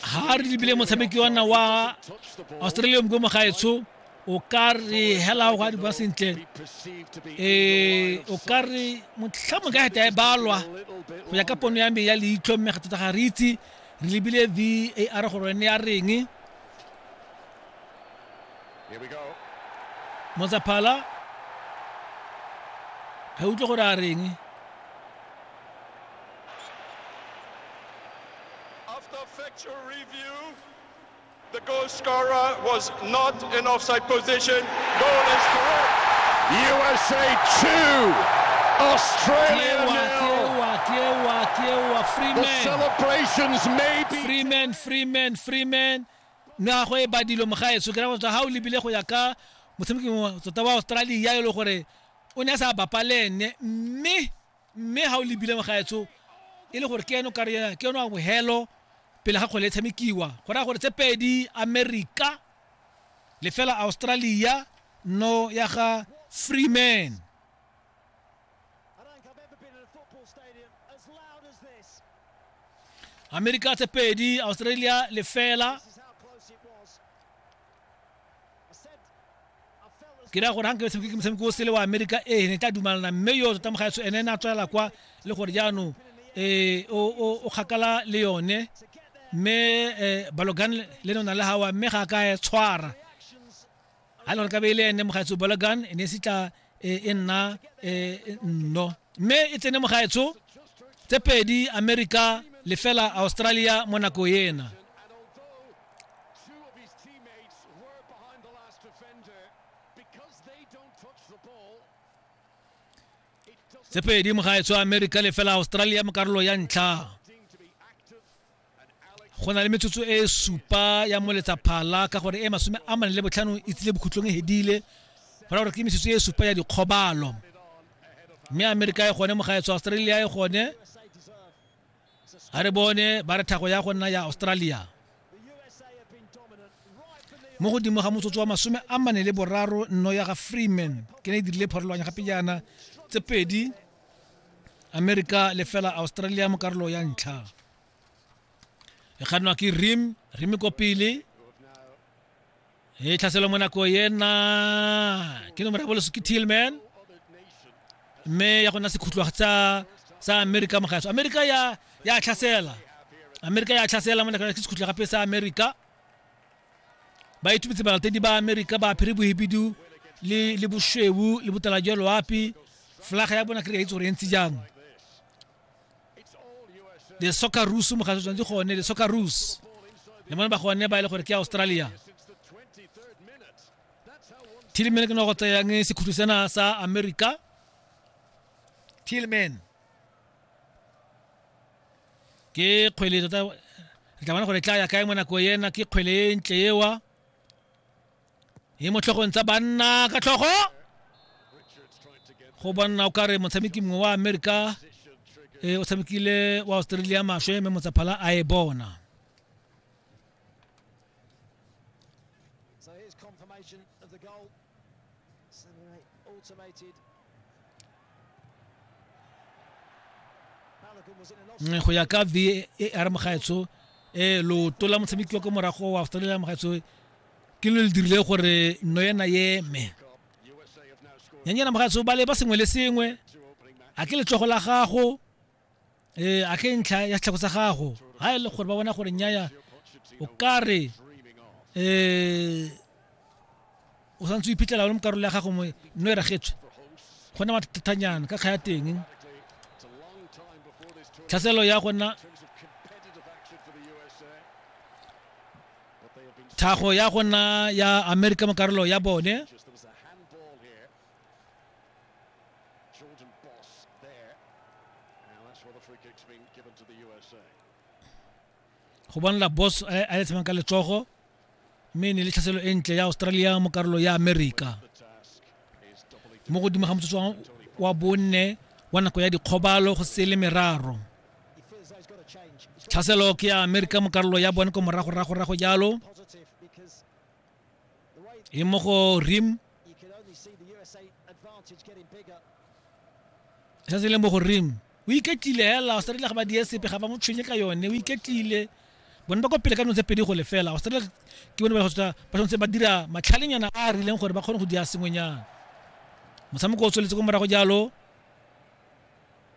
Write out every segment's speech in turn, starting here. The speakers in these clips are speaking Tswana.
ga re lebile motshameki wa nna wa australia mko mogaetsho o ka re hela go a diba sentle um o ka re motlhamo ka geta e balwa go ya ka pono ya me ya leitlho mme ga tota ga re itse re lebile v a r gore ne ya reng motsaphala ga utlwe gore a reng After factual review, the goal scorer was not in offside position. Goal is correct. USA 2, Australia nil. The celebrations may be. Freeman, Freeman, Freeman. na go e badilo mogaetso ke ra go tswa ga o lebile go ya ka motshameki tota wa australia e le gore o ne a sa bapalene mme mme ga o lebile mogaetso e le gore ke eno kare ke eno a mohelo pele ga kgwele e tshamekiwa go raya gore tse pedi america lefela australia no ya ga freeman america tse pedi australia lefela ke raya gore ga nke le tshameke ke motshameko o sele wa amerika ee ne tla dumalana mme yo tota mogaetso ene ne a tswelela kwa le gore jaanong um o kgakala le yone mme um balogan le nona le gawa mme ga a ka e tshwara ga le gore ka be e le ene mogaetso balogan e ne e se tla e, e nna e, e nno mme e tsene mo gaetsho tse pedi america lefela australia mo nako ena tse pedi mo gaetsho america lefela australia mo karolo ya ntlha go na le metsotso e supa ya moletsa phala ka gore e masome a mane le botlhano e tsile bokhutlong e hedile go ra gore ke metsotso e supa ya dikgobalo mme amerika e gone mogaetso australia e gone a re bone ba re thago ya go nna ya australia mo godimo ga motsotso wa masome a mane le boraro nno ya ga freeman ke ne e dirile pharologanya gape jaana tse pedi amerika le fela australia mo karolo ya ntlha e kgannwa ke rim rim ko pele e tlhaselwa mo nako ena ke nomoro ya boloso ke tillman mme ya go nna sekhutlwa sa sa america mogaso america ya ya tlhasela america ya tlhasela mo nakong ke sekhutlwa gape sa america ba itumetse balatedi ba america ba phiri bohibidu le le boshweu le botala jwa loapi flaga ya bona kry-a itse gore e ntse jang the soccer rus mo ga tshwanetse gone the soccer rus le mone ba gone ba ile e gore ke ya australia tilman ke no go tseyang sekhutlo sena sa america tilman ke kgwele tota re tla bona gore tla ya kae mo nako ena ke kgwele e ntle ewa e mo tlhogong tsa banna ka tlhogo go banna o kare motshameki mongwe wa amerika e o tshamekile wa australia maswe mme motsaphala a e bona automated Mm, go ya ka v e a re mogaetso um eh, loto la motshameki wa ko morago wa australia mogaetso ke lo le dirile gore no ena eme nyanyana mogaetso ba le ba sengwe le sengwe a ke letsogo la gago ee a ke ntlha ya setlhako sa gago ga e le gore ba bona gore nyaya o ka re um o santse o iphitlhela o le mo karolo ya gago mongwe nno e ragetswe go na mathatanyana ka kga ya teng tlhaselo ya gona tlhago ya gona ya amerika mo karolo ya bone Jordan Boss there. Now that's where the free kick's been given to the USA. go bonela boss a a letsamang ka letsogo mme ne le tlhaselo e ntle ya australia mo karolo ya america mo godimo ga motsotso wa bonne wa nako ya dikgobalo go se le meraro tlhaselo ke ya america mo karolo ya bone ko moragoragorago jalo e mo go rim se se leng mo go rim o iketlile hela australia ga ba die sepe ga ba mo tshwenye ka yone o iketlile bone ba kwa pele ka nong tse pedi go lefela australia ke bone ba tshwanetse ba dira matlhalenyana a a rileng gore ba kgone go dia sengwenyana motshameko o tsweletse ko morago jalo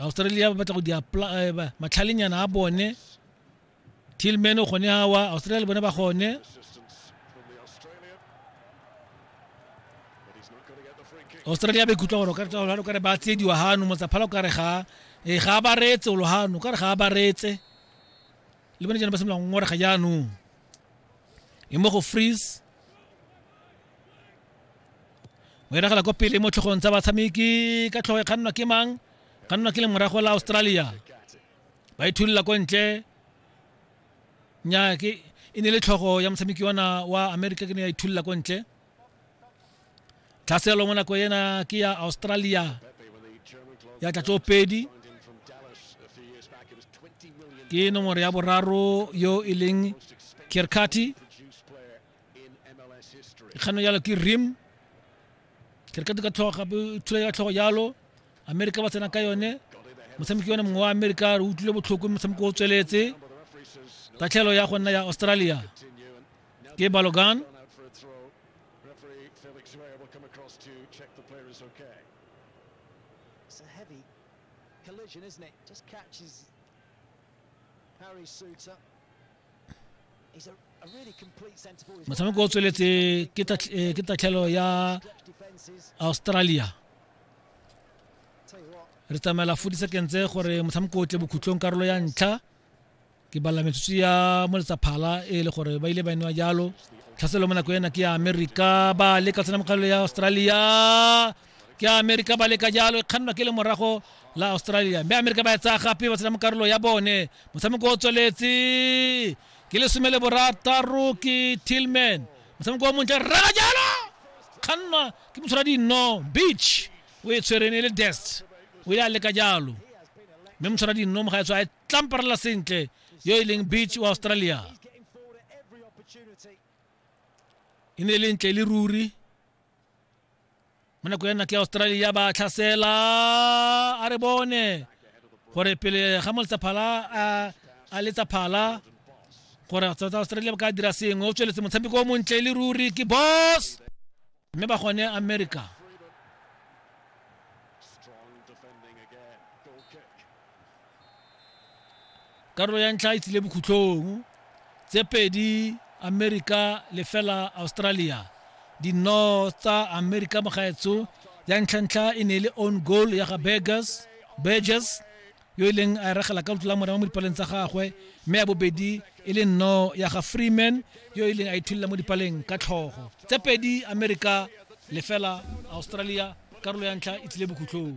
australia ba batla go di eh, matlhalenyana a bone tillman o gone awa australia le bone ba gone australia ba ikutlwa gore o kare ba tsiediwa gano motsaphala o kare ga e ga ba retse o logano kare ga ba retse le bone jana ba semolang ngorega jaanong e mo go freeze o eragela ko pele mo tlhogong tsa batshameki ka tlhogo e kgannwa ke mang kgannwa ke lemorago la australia ba ithulula ko ntle nyaa ke e ne le tlhogo ya motshameki ona wa america ke ne ya ithulula ko ntle tlhaselo mo nako ena ke ya australia ya tlatso pedi ke nomoro ya boraro yo e leng kirkati kgano yalo ke rim ke re ka duka tlhogo gape thula ya tlhogo yalo amerika ba tsena ka yone motshameki yone mongwe wa amerika re utlwile botlhoko motshameko o tsweletse tatlhelo ya go nna ya australia ke balogan collision, isn't it? Just catches Harry Suter. motshameko o tsweletse ke eh, tatlhelo ya australia re tsamaela fo disakentse gore motshameko o tle bokhutlong karolo ya ntlha ke bala metsotso ya mo letsaphala e le gore ba ile ba newa jalo tlhaselo mo nako ena ke ya amerika ba leka tsena mokgalelo ya australia ke amerika ba leka jalo e kgannwa ke le morago la australia mme amerika ba e tsaya gape ba tsena mo karolo ya bone motshameko o tsweletse ke lesome le borataro ke tillman motshameko o montle rera jalo kgannwa ke motshwara dinno beach o e tshwereng e le dest o ile a leka jalo mme motshwara dinno mo ga e tswa e tlamparela sentle yo e leng beach wa australia e ne e le ntle e le ruri mo nako ya nna ke australia ba tlhasela a re bone gore pele ga mo letsaphala a letsaphala gore south australia ba ka dira sengwe o tsweletse motshameko o montle e le ruri ke boss mme ba gone america karolo ya ntlha e tsile bokhutlhong tse pedi amerika le fela australia dino tsa amerika mogaetso ya ntlhantlha e ne e le on goal ya ga burgers burgers yo e leng a e regela ka lotlola mora mo dipaleng tsa gagwe mme ya bobedi e le nno ya ga freeman yo e leng a ithulela mo dipaleng ka tlhogo tse pedi amerika le fela australia karolo ya ntlha e tsile bokhutlhong